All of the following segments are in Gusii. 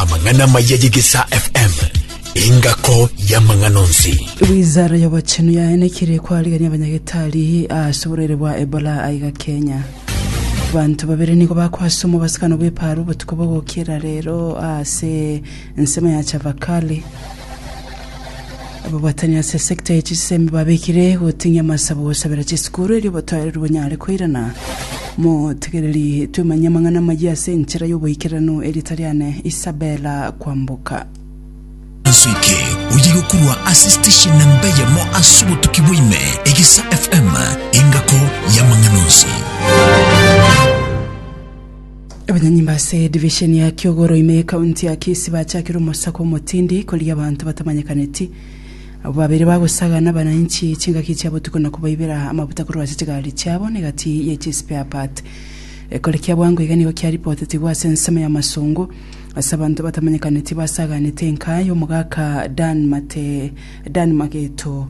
Amang'ana amaya y'Egesaa FM, engako y'amang'ana onsi. Wizara y'obochenu yaenekire kwarigania abanyagetari ase oborwaire bwa Ebola aiga Kenya. Banto babere nigo bakwasomwa obosikano bw'eparo obotuko bogokera rero ase ensemo ya Chavakali. Ababatani ase esekta ye chisemi babekire goting'ia amasabo gosabera chisukuru erio obotoereru bonyare koirana. Motegereri twemanye amang'ana amayia ase enchera y'oboikeranu e rieta riane Isabella Kwamboka. Inso eke oye yokorwa ase station namba eyemo ase obotuki bwa ime egesa FM engako yamang'ana onsi. Abanyanyimbo ase edivisheni ya Kiogoro ime y'ekaunti ya Kisii bachakire omosako omotindi korigia abanto batamanyekaneti. Abwo babere bagosaga nabanainchi chingaki chia botuko na kobaibera amabuta korwa ase chigari chiabo na egati ye chi spare part. Ekore kia bwango iga nigo kiaripotetigwe ase ensemo ya masongo ase abanto batamanyekaneti basaganete enka y'omogaka Dan Mate Dan Mageto,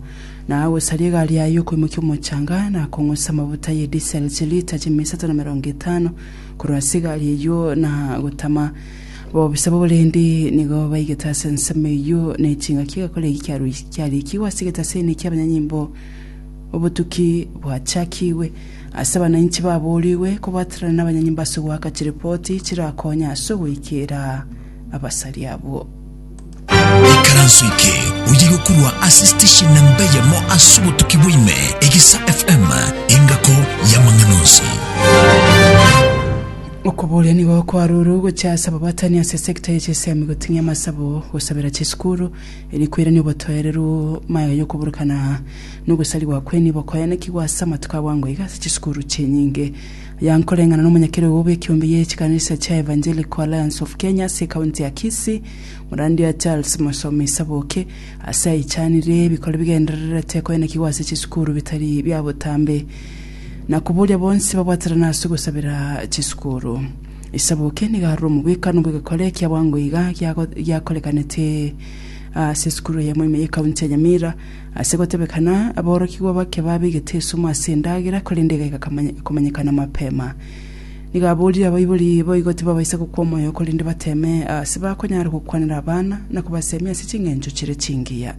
na agosaria egari yaye y'okoimokia omochanga, na akong'usa amabuta ye disel chilita chi'mia isato na emerongo etano korwa ase egari eyio, na agotama. Ababisa b'oborendi nigo baigete ase ensemo eyio, na echingaki egakora eki kiaruis- kiarikigwe ase egetaseni ki'abanyanyimbo, Obotuki bwachakigwe. Ase abananchi baboorigwe kobwaterana n'abanyanyimbo ase ogoaka chiripoti chirakonya ase ogoikera abasaria abwo. Ekaranso eke oyige korwa ase station na mbeyemo ase obotuki bwaime, Egisa FM, engako y'amang'ana onsi. Okoboria nigo kwarure gochia ase ababatani ase sector ya chisemi goting'ia amasabo, gosabera chisukuru, eri koirania obotoereru, maega yokoburukana, nogosarigwa kwe nibo koyanekigwa ase amatuko abwango iga ase chisukuru chinyinge. Young koreng'ana n'omonyakerogo bw'ekeombe ye chikanisa chia Evangelical Alliance of Kenya ase ekaunti ya Kisii, Morandia Charles Mosomi Saboke, ase aichanire ebikori bigendererete koenekigwa ase chisukuru bitari bia botambe, na koboria bonsi babwaterane ase ogosabera chisukuru. Saboke nigo arure omobwekano bw'egekore kia bwango iga giakorekanete ase esukuru eyemo ime y'ekaunti ya Nyamira, Ase gotebekana, aborokigwa bake babegete esumu ase endagera, korende igaika komanyekana mapema. Nigo aborire abaibori boigo tibabaisa gokwa omoyo, korende bateme ase bakonyara gokwanera abana na kobasemia ase ching'encho chire chingiya.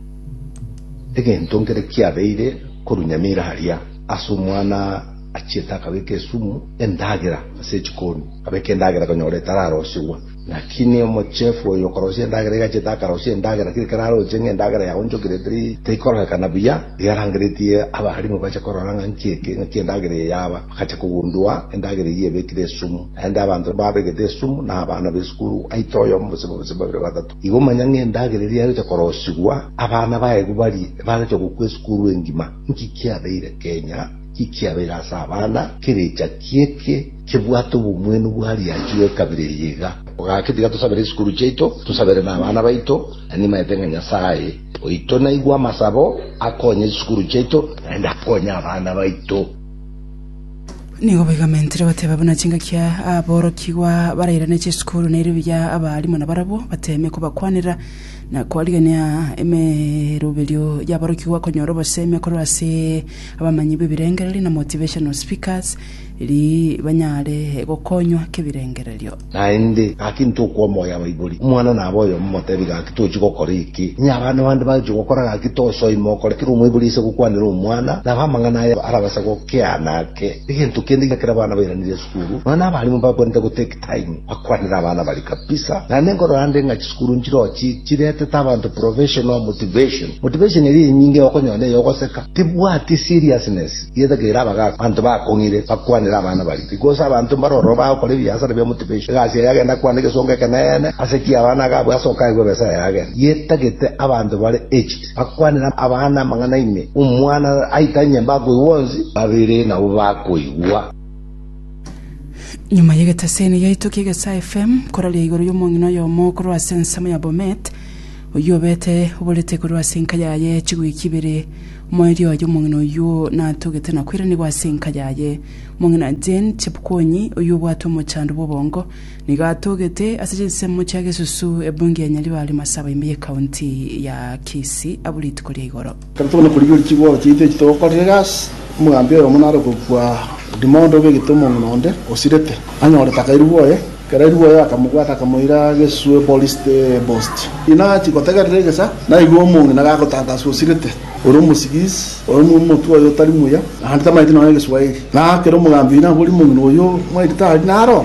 Egento nkere kiabeire korwa nyamira aria, ase omwana achiete akabeka esumu endagera ase echikoni, abeka endagera konyora etararosigwa. Naki n'omochiefu oyo okorosia endagera iga achete akarosia endagera, tari kararoche ng'a endagera yaonchokire tari teikororekana buya, eyarangeretie abaalimu bache korora ng'a nki eke, ng'aki endagera eye yaba, bagacha kogundua endagera eyio ebekire esumu. Naende abanto babegete esumu n'abana b'esukuru aite oyomo gose bobisa babere batato. Igo manya ng'a endagera eria yagocha korosigwa, abana baye baria ebagachia gokwa esukuru engima. Nki kiabeire kenya? Ekiagera ase abana kerecha ki'eke kebwate obomwenu bwa riacha egekabira eria iga. Ogaka tiga tosabere chisukuru chiaito, tosabere nabana baito, na nimaete ng'a Nyasaye oito naigwe amasabo, akonye chisukuru chiaito, naende akonye abana baito. Nigo baigamentire bateba buna chingaki aborokigwa barairane chisukuru na erio buya abaalimo nabarabwo bateeme kobakwanera na koarigereria emeroberio y'aborokigwa konyora obosemi korwa ase Abamanyi b'ebirengererio na motivational speakers eri banyare gokonywa kebirengererio. Naende, gaki ntokwa omoyo abaibori. Omwana nabe oyomo omotebi, gaki tochi gokora eke. Onye abana bande bagochia gokora, gaki tosoima okore. Ekero omwaibori ase gokwanera omwana, nabe amang'ana aya arabase gokeana ake. Egento kende, ekero abana bairaneria esukuru, nonya nabarimo bakwanete gotekia. Time akwanire abana baria kabisa naende nkorora nde ng'a chisukuru nchirochi chiretete abanto professional motivation motivation eria enyinge okonyora neyo ogoseka tibwati seriousness yetakeire abagaka abanto bakong'ire bakwanire abana baria because abanto mbare ororo bagokora ebiasara bia motivation egasi yaye agende akwane egesongo ekeneene ase ki abana agabwe ase okaegwa ebesa yaye agende yetagete abanto bare aged bakwanire abana amang'ana ime omwana aitanye mbakoigwa onsi babere nabo bakoigwa. Nyuma y'egeteseni giaito ki'Egesaa FM, koraria igoro y'omong'ina oyomo korwa ase ensemo ya Bomet, oyio obete oborete korwa ase enka yaye chigwiki ibere. Omoerio oye omong'ina oyio natogete na kwairanigwa ase enka yaye. Omong'ina Jane Chepkwonyi, oyio obwate omochando bw'obongo, nigo atogete ase chinsemo chia Gesusu, ebunge ya Nyaribari, Masaba ime y'ekaunti ya Kisii abwo rituko ria igoro. Kare tokona korigia orikia igoro chiaito echi togokorire gasi, omogambi oyomo nare okobua odimo onde obe egete omong'ina onde osirete, anyore taka erigwe oye. Ekero erigwe oye akamobwata akamoira geswe Bolisti Bosti. Inachi gotegerera egesa, naigwe omong'ina gagotantaswa osirete, ore omosigisi, ore omotwe oye otari muya, naende tamaeti nonya Egeswahili. Na ekero omogambi oye naboria omong'ina oyio, Mwaito tari naro?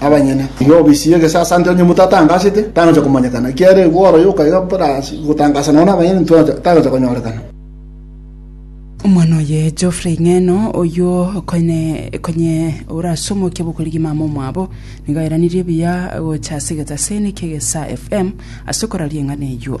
abanyene. Iga obisi y'egesasanti onye omonto atangasete, tangocha komanyekana, ekiagera igwa oroyio okaira buna ase gotangasa nonya nabanyene tocha, tagocha konyorekana. Omwana oye Geoffrey Ng'eno, oyio okoine konye ora ase omokia bokorigia mama omwabo, nigo airanirie buya gocha ase egetaseni kegesa FM ase koraria eng'ana eyio.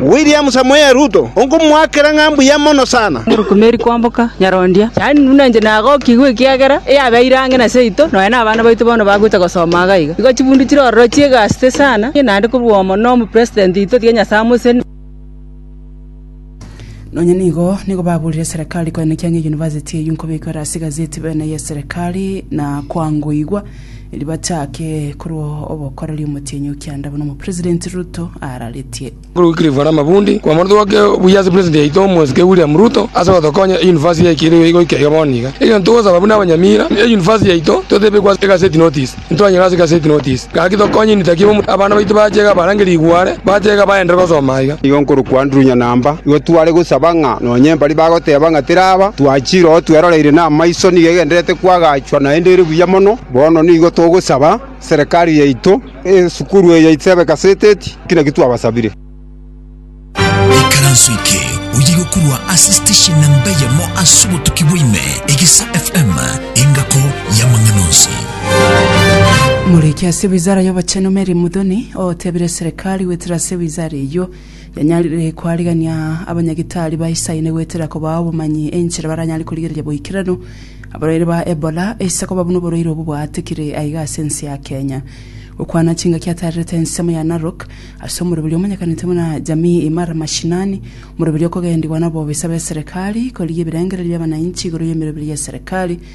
William Samoei Ruto, onkomoakera ng'a mbuya mono sana. Norokumeri kwamboka nyarondia, yaani buna inche nagokigwe ekiagera eyabeire ang'e na seito, nonya nabana baito bono bagocha gosoma iga iga. Igo chibundu chire ororo chi'egasete sana, naende korwa omo na omo President oito tiga Nyasae amoserie. Nonya nigo nigo baburire serekari koenekia ng'a eyunivasiti eyio nkobekwe ase egazeti bene y'eserekari na kwangoigwa. Erio bachake korwa obokoreri omotienyi o kianda buna omopresident Ruto araretie. Korwa Wycliffe Namabundi, Kwamothoboke buya ase president yaito omwesike William Ruto ase gotokonya e university yaito keirwe goika iga bono iga. Egento togosaba buna abanyamira, e university yaito totebekwe ase egaseti notice, ntwanyora ase egaseti notice, gaki tokonye ni taki bomu abana baito bache iga barange rigware, bache iga baenderere gosoma iga. Igo nkorokwa Andrew Nyanamba, igo tware gosaba ng'a nonye mbari bagoteba ng'a teraba, twachire oo tweroreire namaiso nigo egendererete kwagacha. Inchuo naende ere buya mono. Bono nigo togosaba serikari yaito esukuru eye yaito ebe gaseteti, ki nakio twabasabire. Ekaranso eke oyegokorwa ase station namba eyemo ase obotuki bwaime, Egesa FM, engako y'amang'ana onsi. Muriki ase wizara y'obochenu Mary Muthoni otebire serikali goetera ase wizara eyio Yanyarire koarigania abanyagitari ba Isiraeli goetera kobaa obomanyi enchera baranyare korigereria boikeranu abarwaire ba Ebola ase koba buna oborwaire obwo bwaatikire aiga ase ense ya Kenya. Gokwana chingaki atarerete ensemo ya Narok ase omoroberio omanyekanete buna Jamii Imara Mashinani, omoroberio okogendigwa na obobisa bw'eserekari korigia ebirengererio bi'abananchi igoro y'emeroberio y'eserekari,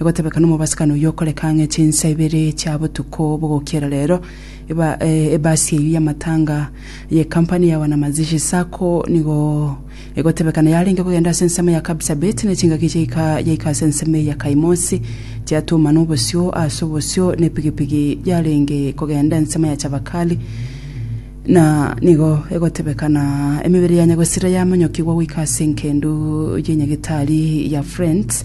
Egotebeka nomobasibani oyio okoreka ang'e chinsa ibere chia botuko bogokiera rero, eba ebasi eyio y'amatanga y'ekampani ya Wanamazishi Sacco nigo egotebeka neyarenge kogenda ase ensemo ya Kapsabet ne chingaki chiaika yaika ase ensemo eye ya Kaimosi chiatumana obosio ase obosio ne pigipigi yarenge kogenda ensemo ya Chabakali na nigo egotebeka na emebere ya Nyagosira yamonyokigwa goika ase engendu ye Nyagetari ya Friends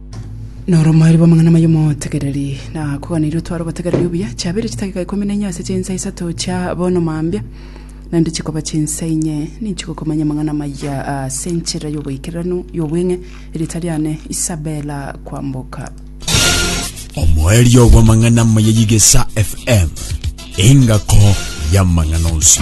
Noromari bw'amang'ana amaya omotegereri, na koganeirie otware obotegereri obuya, chiabeire chidakika ikomi na inye ase chinsa isato chia bono mambia, naende chikoba chinsa inye ninchigwe komanya amang'ana amaya ase enchera y'oboikeranu y'obweng'e, erieta riane Isabella Kwamboka. Omoerio bw'amang'ana amaya y'Igesa FM, engako y'amang'ana onsi.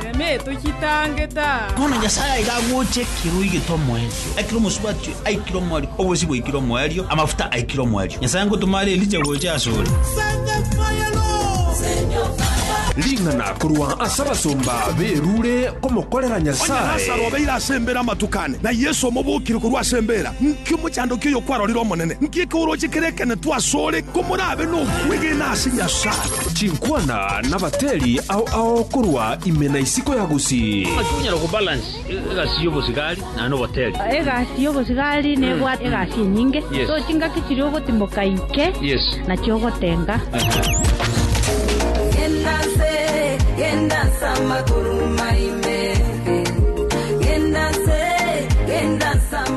Erema etochatangete aa. Bono Nyasae aiga agocha ekero igete omoerio, aikire omosubati, aikire omoerio, obosio bwaikire omoerio, amafuta aikire omoerio. Nyasae ngotoma are Elija gocha asore. Ring'ana korwa ase abasomba b'erure komokorera Onye Nyasae. Lasaro obeire ase embeera amatuko ane, na Yeso omobokire korwa ase embeera, nki omochandoki oyo kwarorire Omonene? Nki ekeoroche kerekenetu asore komorabe nokwegena ase Nyasae? Chinkwana nabateri ao ao korwa ime na isiko ya gusii. Naki onyara gobalance egasi y'obosigari na noboteri. Egasi y'obosigari nebwate egasi enyinge, Yes. so chingaki chiria ogotimoka inche Yes. nachio ogotenga. Genda nse, genda nsa amaguru maime. Genda nse, genda nsa amaguru